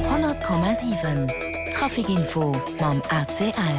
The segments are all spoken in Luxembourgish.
100,7 Traficinfo mam ACL.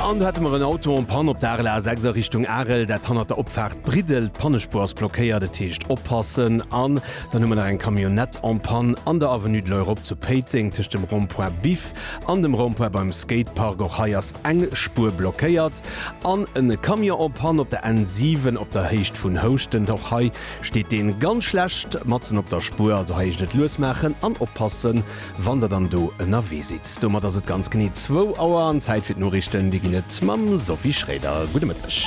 An do hätte mer en Auto en panne op der Arel A6 a Richtung Arel, dat hannert der Opfaart Briddel. D'Pannespuer ass blockéiert, dat heescht oppassen. An dann hu mer nach eng Camionnette en panne an der Avenue de l'Europe zu Péiteng tëscht dem Rond-point Biff an dem Rond-point beim Skatepark. Och hei ass eng Spuer blockéiert. An e Camion en panne op der N7 op der Héicht vun Houschten. Och hei steet deen ganz schlecht matzen op der Spuer, also hei eischt et lues maachen an oppassen wann der dann do ënnerwee sidd. Domat ass et ganz genee zwou Auer an Zäit fir d'Noriichten, déi ginn et mam Sophie Schroeder. Gudde Mëtteg.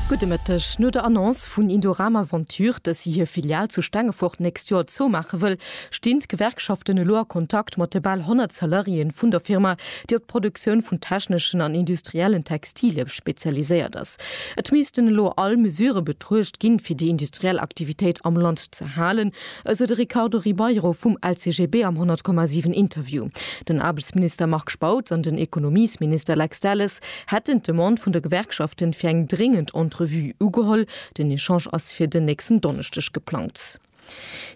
Gudde Mëtteg. No der Annonce vun Indorama Venture, dass si hir Filial zu Stengefort d'nächst Joer zoumaache wëll, stinn d'Gewerkschaften elo a Kontakt mat de bal 100 Salariéeën vun der Firma, déi op d'Produktioun vun techneschen an industriellen Textilien spezialiséiert ass. Et missten elo all Mesure betruecht ginn, fir déi industriell Aktivitéit am Land ze halen, esou de Ricardo Ribeiro vum LCGB am 100,7 Interview. Den Aarbechtsminister Marc Spautz an den Ekonomiesminister Lex Delles hätten d'Demande vun de Gewerkschaften fir eng dréngend Entrevue ugeholl. Den Echange ass fir den nächsten Donneschdeg geplangt.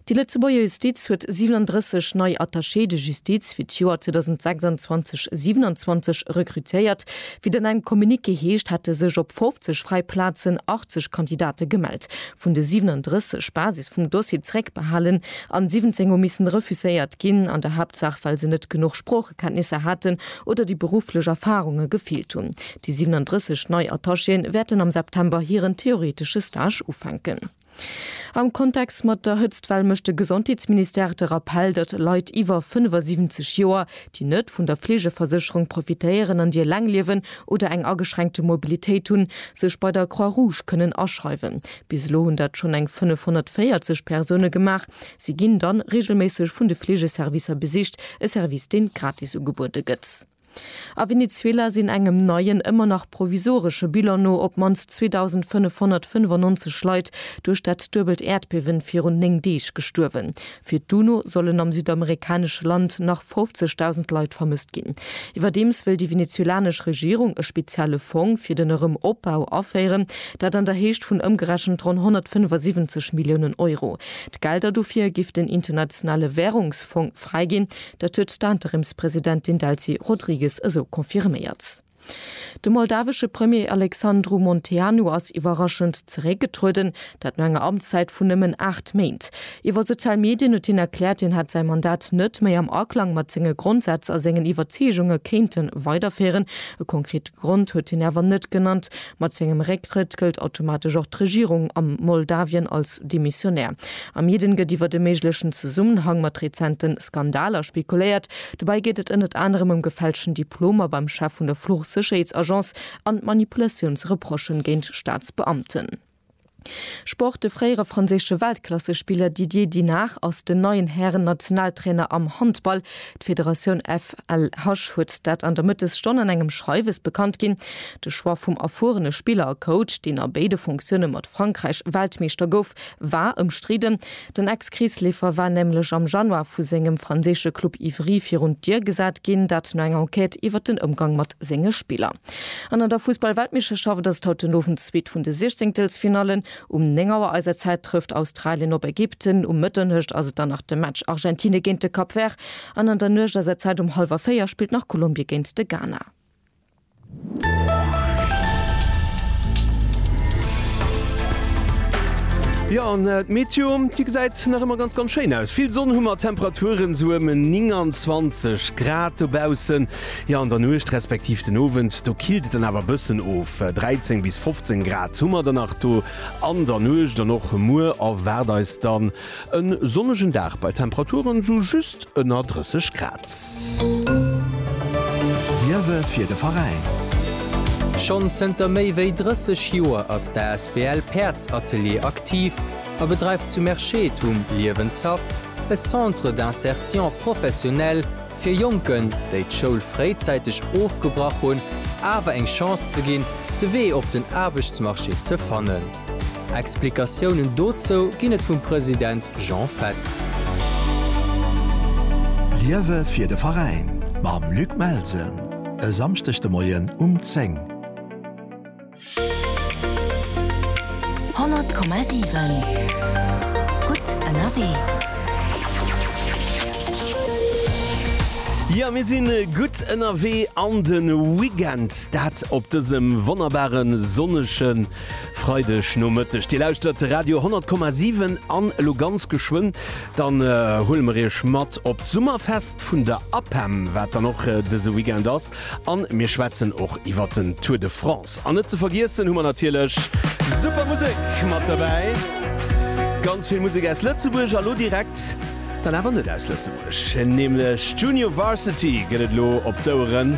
Déi Lëtzebuerger Justiz huet 37 nei Attachés de justice fir d'Joer 2026, 27 rekrutéiert. Wéi et an engem Communiqué heescht, hätte sech op 50 fräi Plazen 80 Kandidate gemellt. Vun de 37, Basis vum Dossier zréckbehalen an 17 hu missen refuséiert ginn, an der Haaptsaach well se net genuch Sproochekenntnisser haten oder déi berufflech Erfarunge gefeelt hunn. Déi 37 nei Attachéen wäerten am September hiren theoretesche Stage ufänken. Am Kontext mat der Hëtztwell mécht de Gesondheetsministère de Rappell, datt Leit iwwer 75 Joer, déi net vun der Fleegeversécherung profitéieren an déi eleng liewen oder eng ageschränkte Mobilitéit hunn, sech bei der Croix Rouge kënnen aschreiwen. Bis elo hunn dat schonn eng 540 Persoune gemaach. Si ginn dann reegelméisseg vun de Fleegeservicer besicht, e Service deen gratis ugebuede gëtt. A Venezuela sinn engem neien, ëmmer nach provisoresche Bilan no op d'mannst 2.595 Leit duerch dat duebelt Äerdbiewen virun néng Deeg gestuerwen. Fir d'UNO sollen am südamerikanesche Land nach 50.000 Leit vermësst ginn. Iwwerdeems wëll déi venezuelanesch Regierung e spezielle Fong fir den Erëm Opbau aféieren, dat an der Héicht vun ëmgerechent ronn 175 Milliounen Euro. D'Gelder dofir géif den Internationale Wärungsfong fräiginn. Dat huet d'Interimspresidentin Delcy Rodrigues esou confirméiert. De moldawesche Premier Alexandru Munteanu ass iwwerraschend zeréckgetrueden, dat no enger Amtszäit vun nëmmen 8 Méint. Iwwer sozial Medien huet hien erkläert, hien hätt säi Mandat net méi am Aklang mat senge Grondsätz a sengen Iwwerzeegunge kéinte weiderféieren. E konkret. Grond huet hien awer net genannt. Mat sengem Récktrëtt gëllt automatesch och d'Regierung a Moldawien als demissionär. Am Jeden gëtt iwwert e méiglechen Zesummenhang mat rezente Skandaler spekuléiert. Dobäi geet et ënnert anerem ëm gefälschten Diplomer beim Chef vun der Fluchsécherheetsagence an Manipulatiounsreprochen géint Staatsbeamten. Sport, De fréiere franséische Weltklassespiller Didier Dinard ass den neien Hären-Nationaltrainer am Handball. D'Federatioun FLH huet dat an der Mëttesstonn an engem Schreiwes bekannt ginn. De Choix vum erfuerene Spiller a Coach, deen a béide Funktioune mat Frankräich Weltmeeschter gouf, war ëmstridden. Den Ex-Kreesleefer war nämlech am Januar vu sengem franséische Club Ivry virun d'Dier gesat ginn, dat no enger Enquête iwwer den Ëmgang mat senge Spiller. An an der Fussball-Weltmeeschterschaft ass et haut den Owend d'zweet vun de Siechzéngtelsfinallen. Um 9 Auer eiser Zäit trëfft Australien op Ägypten, um Mëtternuecht ass et dann nach de Match Argentine géint de Cap Vert an an der Nuecht eiser Zäit um hallwer véier spillt nach Kolumbie géint de Ghana. Jo, an d'Meteo, déi gesäit nach ëmmer ganz, ganz schéin aus. Vill Sonn hu mer, Temperaturen sou ëm 29 Grad dobaussen. Jo, an der Nuecht respektiv den Owend, do killt et dann awer e bëssen of, 13 bis 15 Grad hu mer dann nach do an der Nuecht an och muer erwaart eis dann. E sonnegen Dag bei Temperaturen sou just ënner 30 Grad. Liewe fir de Veräin! Schonn zënter méi wéi 30 Joer ass d'asbl Päerdsatelier aktiv a bedreift zu Merschede um Liewenshaff e Centre d'insertion professionnelle fir Jonken, déi d'Schoul fréizäiteg ofgebrach hunn, awer eng Chance ze ginn, de Wee op den Aarbechtsmarché ze fannen. Explikatiounen dozou ginn et vum President Jean Fetz. Liewe fir de Veräin mam Luc Melsen e Samschdeg de Moien um 10. 100,7 Gutt ënnerwee. Jo, mir sinn gutt ënnerwee an de Weekend, dat op dësem wonnerbare sonnege. Freideg Nomëtteg, Dir lauschtert Radio 10,7 an elo ganz geschwënn, dann huele mer Iech mat op d'Summerfest vun der APEM, wat dann och dëse Weekend ass an mir schwätzen och iwwert den Tour de France. An net ze vergiessen hu mer natierlech super Musek mat derbäi, ganz vill Musek aus Lëtzebuerg a lo direkt dann awer net aus Lëtzebuerg, nämlech Junior Varsity gëtt et elo op d'Oueren.